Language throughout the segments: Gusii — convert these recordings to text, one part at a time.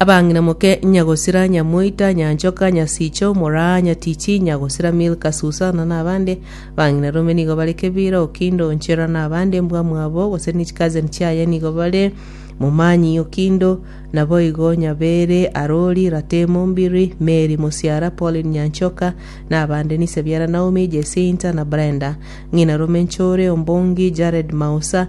Abang'ina moke, nyagosira nyamoita, nyanchoka, nyasiicha, omoraa, nyatichi, nyagosira Milka, Susana, na abande. Abang'ina rome nigo bare Kebira, Okindo, Onchera, na abande, mbwamwabo, gose ne chicousin chiaye nigo bare, Momanyi, Okindo, naboigo Nyabeere, Arori, Ratemo, Mbiri, Mary, Mosiara, Pauline, Nyanchoka, na abande, nise biara Naomi, Jacinta, na Brenda. Ng'ina rome nchore, Ombongi, Jared, Mausa,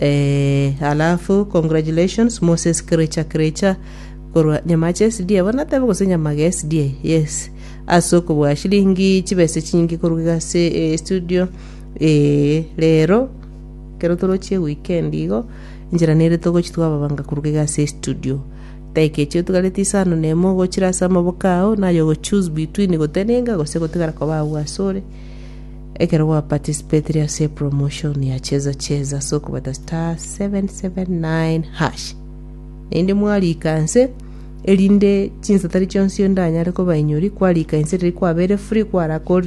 Eeh alafu congratulations Moses Kiricha Kiricha korwa Nyamache SDA bono natebe gose Nyamage SDA yes ase okobua shilingi chibesa chinyinge korwa iga ase eh, studio eh, rero kero torochie weekend igo enchera nere togochi twababanga korwa iga ase studio daika echi otigareti isano na emo ogochira ase amaboko ao naye ogo choose between gotenenga gose gotigara koba agwo asore Ekero gwa participatire ase promotion ya cheza cheza ase okobeta *779#, naende mwariika inse erinde chinsatari chionsi onde anyare kobainyoria, kwariika inse riria kwabeire free kwarakorire